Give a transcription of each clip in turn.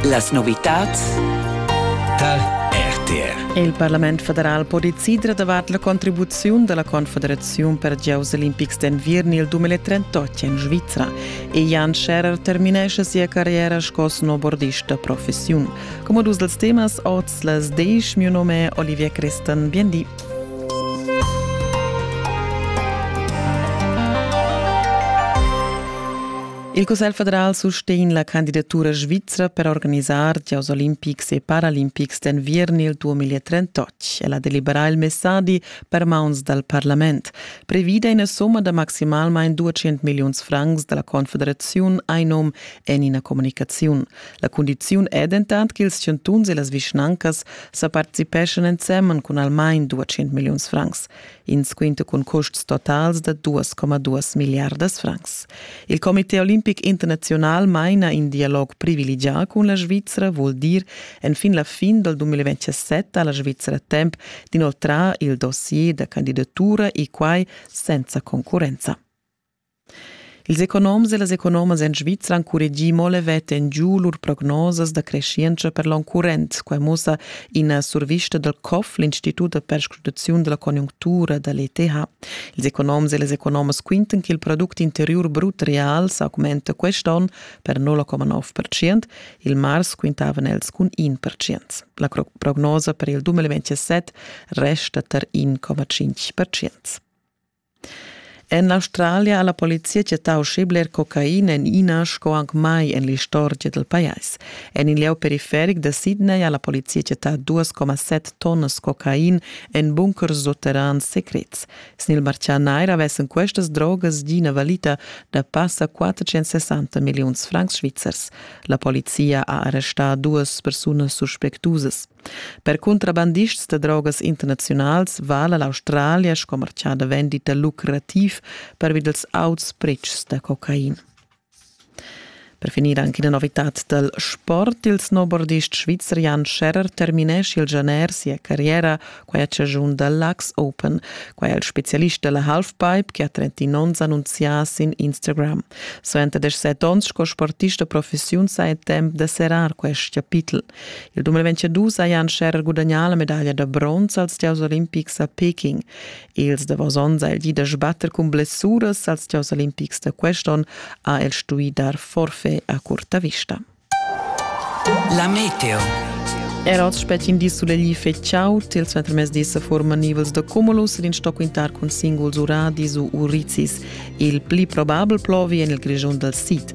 Las novitads tal RTR. Il Parlament federal po decider davart la contribuziun della Confederazione per giocs olimpics d'enviern il 2038 in Svizra e Jan Scherer terminesce sia carriera sco snowboardista professiun. Come dus dels temas oz les deich, mio nome è Olivia Christan, bien di. Il Cussegl federal sustegn la candidatura svizra per organisar giocs olimpics e paralimpics d'enviern il 2038. El ha deliberà il messadi per mauns dal parlament. Previda ina somma da maximalmain 200 milliuns francs da la Confederaziun Einum en ina comunicaziun. La cundiziun è dentant ch'ils chantuns e las vischnancas sa participeschan ensemen cun almain 200 milliuns francs. in squinto cun custs totals da 2,2 milliardas francs. Il Comité olimpic internazional maina in dialog privilegià cun la Svizra, vul dir enfin la fin dal 2027 ha la Svizra temp d'inoltrar il dossier da candidatura e quai senza concurrenza. Ils economs e las economas en Svizra han curregì mo levet en giu lur prognosas da creschientscha per l'onn current. Quai mussa ina survista dal COF, l'Institut da perscrutaziun da la conjunctura da l'ETH. Ils economs e las economas quintan che il product interiur brut real s'augmenta quest'onn per 0,9 percent, il mars quintavan els cun 1 percent. La prognosa per il 2017 resta tar 1,5 percent. En l'Australia ha la polizia chattà uschè bler cocaina en ina sco anc mai en l'istorgia dal pajais. En il lieu periferic da Sydney ha la polizia chattà 2,7 tonnas cocain en bunkers sutterrans secrets. Sin il martgà nair avessan questas drogas gì ina valita da passa 460 milliuns francs svizzers. La polizia ha arrestà duas persunas suspectusas. Per contrabandists da drogas internaziunals vala l'Australia sco martgà da vendita lucrativ pervi dals auts pretschs da cocain. Per finir anche la novità dal sport. Il snowboardist svizzer Jan Scherrer terminesce il gener sia carriera, quai a chaschun da l'Ax Open. Quai è il specialist della halfpipe che ha 31 onns annunzià sin Instagram. Suenter 17 onns sco sportista professiun sa è temp da serrar quest chapitel. Il 2002 hajan Scherer gudagnà la medaglia da bronz als Gieus olimpics a Peking. Els davos onns ha il di da sbatter cun blessuras als Gieus olimpics da quest'on ha el stuì dar forfait a curta vista. La meteo. Era oz spetin di sulegli fetschau, tils ventermesdi sa forman nivels da cumulus ed in sto quintar cun singuls uradis u urizis. Il pli probabel plovi en il Grischun dal sid.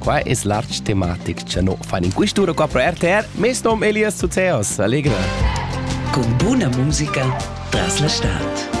Qua es l'arch tematic cha no fan in quist'ura qua pro RTR. Mes nom Elias Zuzeos, Allegra. Con buna musica tras la stad.